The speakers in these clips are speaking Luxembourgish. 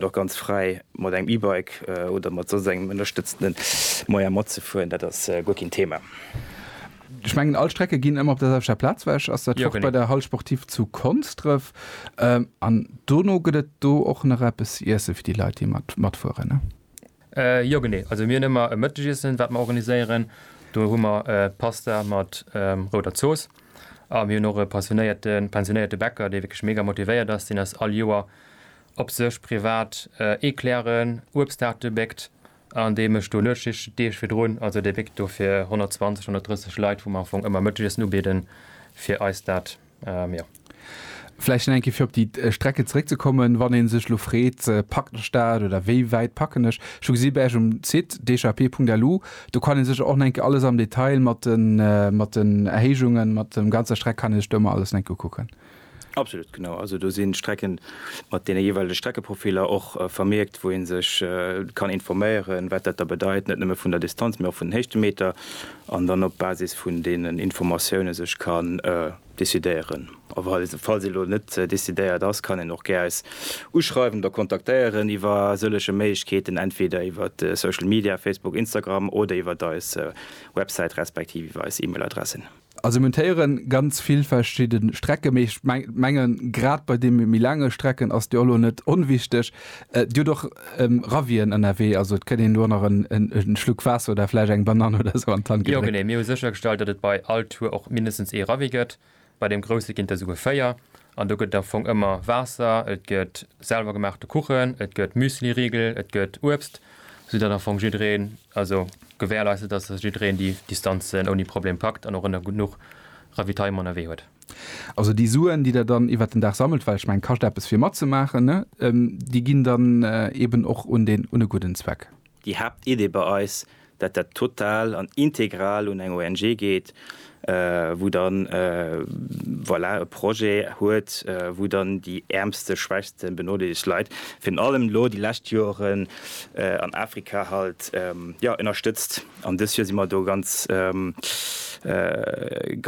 Et och ganz fräi mat engem E-Bike oder mat soss engem ënnerstëtztende Moyen matzefueren, dat ass guer keen Thema. Ech mengen all Strecke ginn ëmmer op der selwechter Plaz wech. Ass dat och bei der Halle Sportive zu Konsdref? An dono gëtt et do och nach eppes ze iessen fir déi Leit déi matfueren? Jo genee, also mir hunn ëmmer e Mëttegiessen wat mer organiséieren. Do hu mer Pasta mat rouder Zooss a mir hunn och e passionéierte pensionéierte Bäcker dee wierklech mega motivéiert ass, deen ass all Joer op sech privat Eclairen, Uebstaarte béckt an dee mécht do Nuetsschichten d'Deeg virdrun. Also dee béckt do fir 120, 130 Leit, wou mer am Fong ëmmer Mëttegiessen ubieden, fir eis dat, jo. Vläicht nach eng Kéier fir op déi Strecke zeréckzekommen, wann ee sech elo freet, packt ech dat oder wéi wäit packen ech? Ech hu gesi bei Iech um Site dhp.lu, do kann ee sech och nach eng Kéier alles am Detail mat den Erhéijungen, mat der ganzer Streck kann ee sech do ëmmer alles nach eng Kéier ukucken. Absolut, genau. Also do sinn d'Strecken mat deene jeeweilege Streckeprofiler och vermierkt, wou ee sech kann informéieren, wat dat da bedeit, net nëmme vun der Distanz, mee och vun den Héichtemeter, an dann op Basis vun deenen Informatioune sech kann decidéieren. A falls ee elo net decidéiert ass, kann een och gär eis uschreiwen oder kontaktéieren iwwer sëllege Méiglechkeeten, entweder iwwer Social Media, Facebook, Instagram, oder iwwer eis Websäit respektiv iwwer eis E-Mail-Adressen. A se montéieren ganz vill verschidde Strecke, mee ech mengen, grad bei deene méi laange Strecken ass déi och elo net onwichtig. Dir hutt och Ravien ënnerwee, also et kënn een do nach e Schluck Waasser oder vläicht eng Banann oder esou an d'Hand gedréckt. Jo, genee. Mir hu séchergestallt, datt et bei all Tour och mindestens ee Ravi gëtt. Bei deem grousse ginn et der souguer véier. An do gëtt et am Fong ëmmer Waasser, et gëtt selwer gemaachte Kuchen, et gëtt Müsliriegel, et gëtt Uebst, sou datt am Fong jiddereen, also gewährleist ass, datt jiddereen déi Distanzen ouni Problem packt an och ënner genuch Ravitaillement ënnerwee huet. Also déi Suen, déi Der dann iwwert den Dag sammelt, well ech mengen, kascht eppes fir matzemaachen, ne, déi ginn dann eeben och un den, un e gudden Zweck. Déi Haaptidee bei eis, dat dat total an integral un eng ONG geet, wou dann, voilà, e Projet huet, wou dann déi äermste, schwächste, benodeelegt Leit, virun allem elo déi lescht Joren an Afrika halt, jo, ënnerstëtzt. An dës Joer si mer do ganz,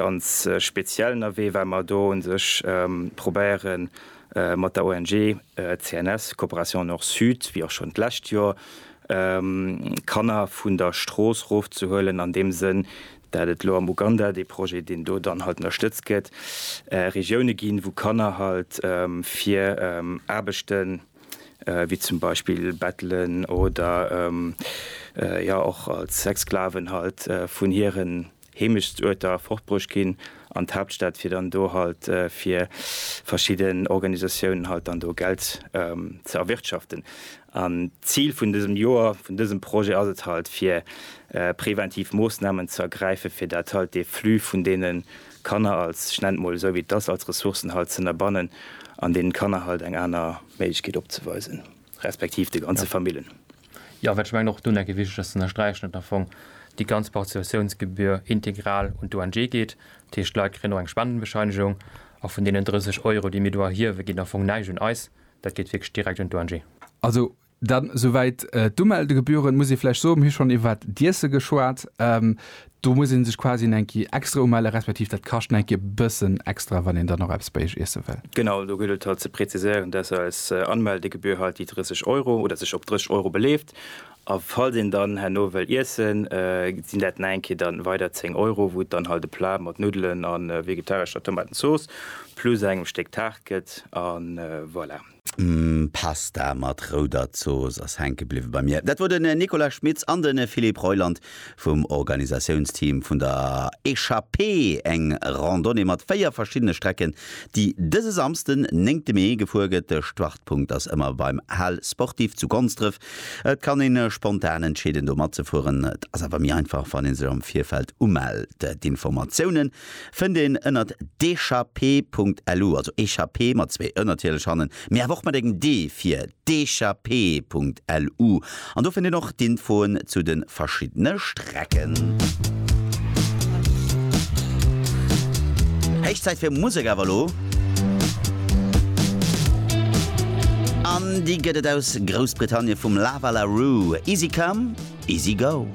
ganz speziell ënnerwee, well mer do u sech probéieren, Mat der ONG CNS, Coopération Nord-Sud, wéi och schonn d'lescht Joer, Kanner vun der Strooss rofzehuelen, an deem Sënn, dat et elo am Uganda, dee Projet, deen do dann halt ënnerstëtzt gëtt, Regioune ginn, wou Kanner halt fir Aarbechten, wéi zum Beispill Bettelen oder jo och als Sexsklaven halt, vun hiren Heemechtsuerter fortbruecht ginn an d'Haaptstad fir dann do halt fir verschidden Organisatiounen halt dann do Geld ze erwirtschaften. An d'Zil vun dësem Joer, vun dësem Projet ass et halt fir präventiv Moossnamen ze ergräife fir dat halt dee Flux vun deene Kanner als, ech nennen et mol esou wéi et ass, als Ressourcen halt z'ënnerbannen an deenen Kanner halt eng aner Méiglechkeet opzeweisen. Respektiv de ganze Famillen. Jo, wat ech mengen och do nach wichteg ass ze ënnersträichen, datt am Fong déi ganz Participatiounsgebühr integral un d'ONG geet. Dat heescht, d'Leit kréien och eng Spendenbescheinigung a vun deenen 30 Euro, déi mir do erhiewen, geet am Fong näischt un eis. Dat geet wierklech direkt un d'ONG. Also dann souwäit d'Umeldegebühren. Muss ee vläicht soen, mir hu schonn iwwert d'Iesse geschwat. Do muss een sech quasi eng Kéier extra umellen, respektiv dat kascht nach eng Kéier e bëssen extra, wann een dann nach eppes bei iech iesse wëll. Genau, do gëllt et halt ze präziséieren, dass eis Anmeldegebühr halt déi 30 Euro oder sech op 30 Euro beleeft. A falls een dann herno wëll iessen, sinn dat nach eng Kéier dann weider 10 Euro, wou et dann halt e Plat mat Nuddelen a vegetarescher Tomatenzooss plus engem Stéck Taart gëtt. A voilà. Pasta mat rouder Zooss ass hänke bliwwe bei mir. Dat wor den Nicolas Schmitz an den Philippe Reuland vum Organisatiounsteam vun der Echappée, eng Randonnée mat 4 verschiddene Strecken, déi dëse Samsden, 9 Mee, gefuer gëtt. De Startpunkt ass ëmmer beim Hal Sportif zu Gonsdref. Et kann een spontan entscheeden do matzefueren, et ass awer méi einfach wann een sech am Virfeld umellt. D'Informatiounen fënnt een ënnert dechappé.lu, also Echappée mat zwee ë natierlech hannen, mee awer och mat engem d fir dechappée.lu. An do fënnt een och d'Infoen zu de verschiddene Strecken. Héich Zäit fir Musek awer elo. An déi gëtt et aus Groussbritannie vum Lava La Rue, Easy Come, Easy Go.